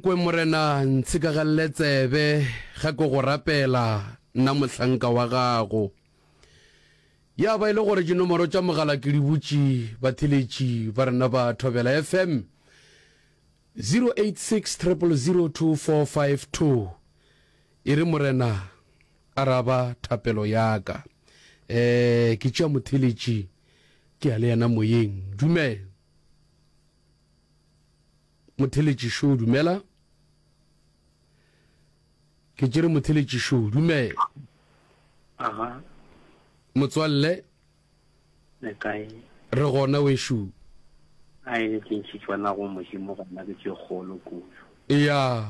Nkwe Morena, ntshikagalele tsebe ge ke go rapela, nna mohlanka wa gago. Ya ba e le gore dinomoro tša mogala ke di butše batheletši ba rena ba Thobela FM, 086 000 2452, e re Morena, araba thapelo ya ka. Um, ke tšea motheletši, ke ya le yena moyeng. Dumela. Motheletši Show, Dumela. Ke tšere Motheletši Show, Dumela. Aha. Motswalle. Le kae? Re gona wešo. A e ke ntšhitšwa na go Modimo gona ke tše kgolo kudu. Eya.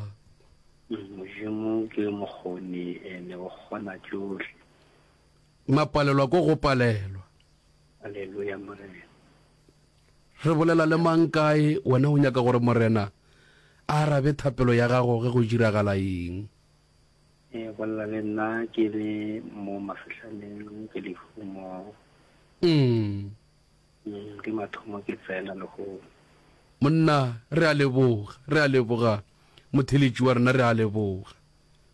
Mm, Modimo ke mokgoni ene o kgona tšohle. Mapalelwa ko go palelwa. Aleluya Morena. Re bolela le mang kae? Wena o nyaka gore Morena a arabe thapelo ya gago ge go diragala eng? E bolela le nna ke le mo mafehlaneng, ke lehumo. Umm. Umm, ke mathomo ke tsena lehono. Monna, re a leboga, re a leboga, motheletši wa rena, re a leboga.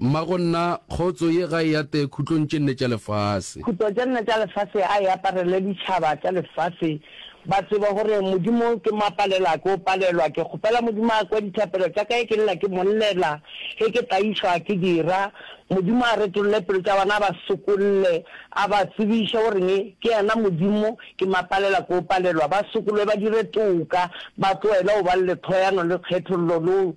Mma go nna, kgotso ye ga e ate khutlong tše nne tša lefase. Khutlo tše nne tša lefase a e aparele ditšhaba tša lefase, ba tsebe gore Modimo ke mo a palela ke o palelwa. Ke kgopela Modimo a kwe dithapelo tša ka ge ke lla ke mo llela, ge ke tlaišwa ke di ra. Modimo a retolle pelo tša bona, a ba sokolle, a ba tsebiše goreng ke yena Modimo ke mo a palela ke o palelwa. Ba sokolwe ba dire toka, ba tloele go ba le lethwayano le kgethollo le go.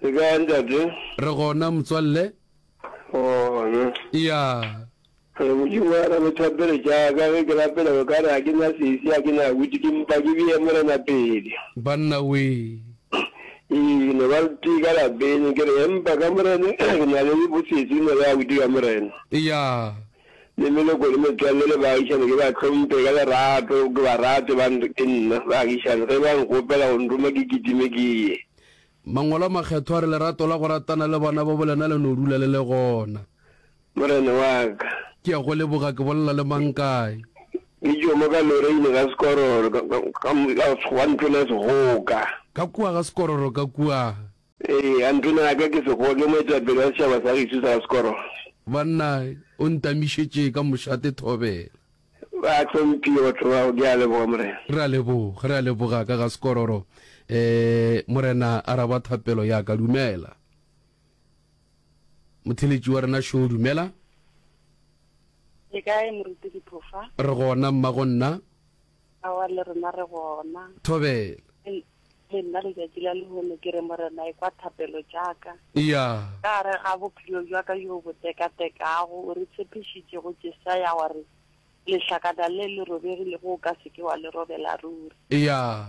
Ke kae ntate? Re gona motswalle. Gona. Eya. Re Modimo wa ka le thapelo tša ka ge ke lapela o ka re ga ke na sesi ga ke na witi ke mpa ke bee morena pele. Banna wee. Ee ke no ba le tee ka lapeng ke re empa ka morena ke na le bosetsi ke no le ya witi ka morena. Eya. Le leloko le metswalle le baagišani ke ba hlompe ka lerato, ke ba rate ba re ke nna. Baagišani ge ba nkgopela go nruma ke kitime ke ye. Mangwalo a Makgethwa a re lerato la go ratana le bana babo lena le no dula le le gona. Morena wa ka. Ke a go leboga, ke bolela le mang kae? Ke tšomo ka Loreine ga Sekororo, ka, ka, ka, ka Sekgowa ntlong ya Sehoka. Ka kua ga Sekororo, ka kua. Ee, a ntona ya ka ke sekgowa, ke moetapele wa setšhaba sa gešu sa Skoro. Banna, o ntamišetše ka mošate thobela. Ba hlomphiwe batho bao, ke a leboga, Morena. Re a leboga, re a leboga ka ga Skororo. E, Morena, araba thapelo ya ka. Dumela. Motheletši wa rena Shaw, dumela. Le kae, Moruti Diphofa? Re gona, mma, go nna. Aowa, le rena re gona. Thobela. Ei, le nna letšatši la lehono ke re, Morena, ekwa thapelo tša ka. Eya. Ka gare ga bophelo bja ka bjo bo tekatekago, o re tshepišitše go Jesaya wa re, Lehlakana le le robegilego o ka se ke wa le robela ruri. Eya.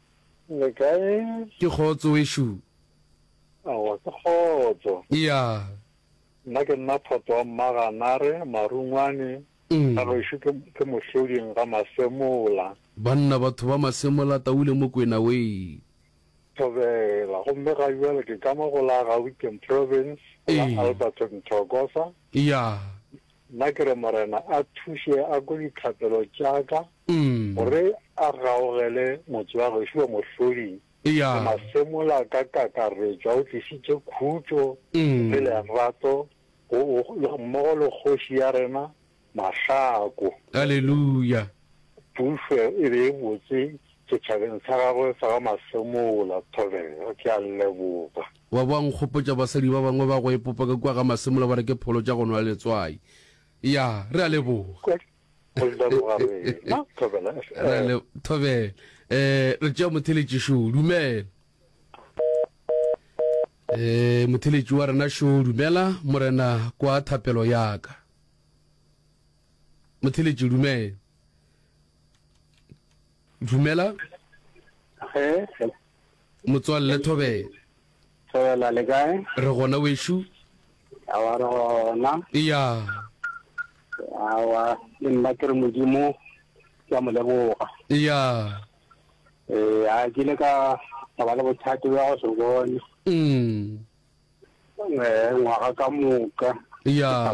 Le kae? Ke kgotso wešo. Aowa ke kgotso. Eya. Nna ke nna Photo wa Mmaganare, Marungwane, ga gešo ke, ke Mohloding ga Masemola. Banna batho ba Masemola, Taule Mokwena wee. Thobela, gomme ga bjale ke ka mo go la Gauteng Province, go la Alberton Thokoza. Eya. Nna ke re Morena a thuše a kwe dithapelo tša ka gore a gaogele motse wa gešo wa Mohloding. Re Masemola ka kakaretšo a o tlišitše khutšo le lerato go mmogo le kgoši ya rena Mahlaku. Aleluya! Pušo e be e botse setšhabeng sa gagwe sa ga Masemola. Thobela. Ke a leboga. Wa bo a nkgopotša basadi ba bangwe ba go epopa ka kua ga Masemola ba re ke pholo tša go nwa letswai. Ya, re a leboga. Re a leboga rena Thobela. Re a le, Thobela. Eh, re tšea motheletši šo. Dumela. Eh, motheletši wa rena šo. Dumela, Morena, kwa thapelo ya ka. Motheletši, dumela. Dumela. Ge. Motswalle Thobela. Thobela le kae? Re gona wešo. A wa re gona. Iya. A wa le nna ke re modimo ke a mo leboga. Iya. Eh a ke le ka ka ba le bothata ba go se bone. Mm. Eh ngwaga ka moka. Iya.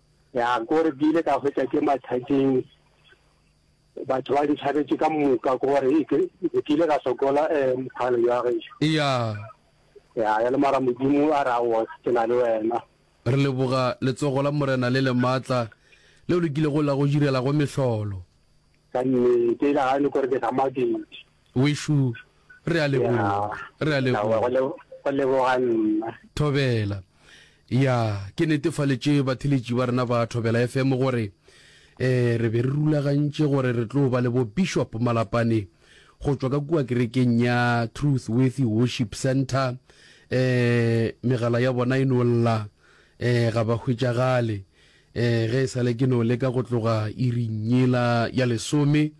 Ya gore ke ile ka hwetša ke mathateng, batho ba ntšhabetše ka moka ke gore e ke ke ile ka sokola um mokgalo ya gešo. Eya. Ya ya le mara Modimo a re aowa ke na le wena. Re leboga letsogo la Morena le lematla leo le kilego la go direla go mehlolo. Ka nnete e ile ya re ke sa maketše. Wešo, re a leboga, re a leboga. Go leboga nna. Thobela. Ya, ke netefaletše batheletši ba rena ba Thobela FM gore e, re be re rulagantše gore re tlo ba le bo Bishop Malapane go tšwa ka kua kerekeng ya Truth Worthy Worship Centre. E, megala ya bona e no lla, e, ga ba hwetšagale. Ee, ge e sa le ke no leka go tloga iring yela ya lesome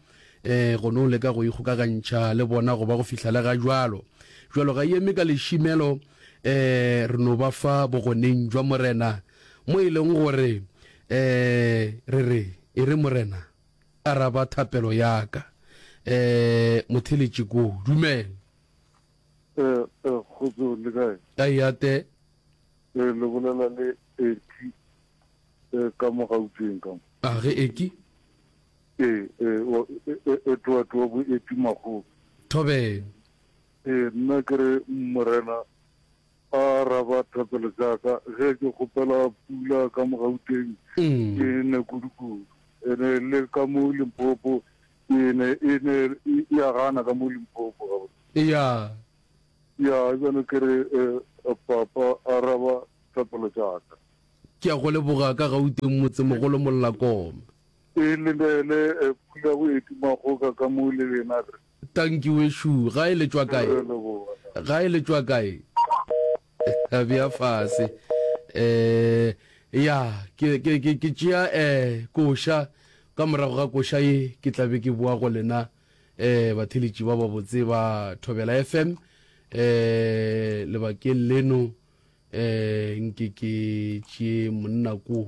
ee, go no leka go ikgokagantšha le bona go ba go fihla le ga jalo. Jalo ga yeme ka lešimelo ee, re no ba fa Bogoneng jwa Morena, mo e leng gore ee, re re, E re Morena, araba thapelo ya ka. Ee, motheletše koo. Dumela. Ee, ee, kgotsong, le kae? A eya, Te. Ee, le bolela le Ecky ka mo Gauteng ka mo. A ge Ecky? Ee, ee, wa Edward wa bo Ecky Makgobe. Thobeng. Ee, nna ke re Morena a araba thapelo tša ka ge ke kgopela pula ka mo Gauteng e ne kudukudu ene le ka mo Limpopo e ne e ne e a gana ka mo Limpopo gabotse. Eya. Ya, bjalo ke re, eh, Papa, araba thapelo tša ka. Ke ya go leboga ka Gauteng, motsemogolo Mollakoma. E lebele, eh, pula go e tuma goka ka mo le lena, re. Tanki wešo, gae le tšwa kae? Re leboga. Gae le tšwa kae? A bea fase. Eh, ya, ke, ke, ke, ke tšea, eh, koša. Ka morago ga koša ye, ke tla be ke boa go lena. Ee, batheeletši ba babotse ba Thobela FM ee, lebakeng leno ee, nke ke tšee monna ko.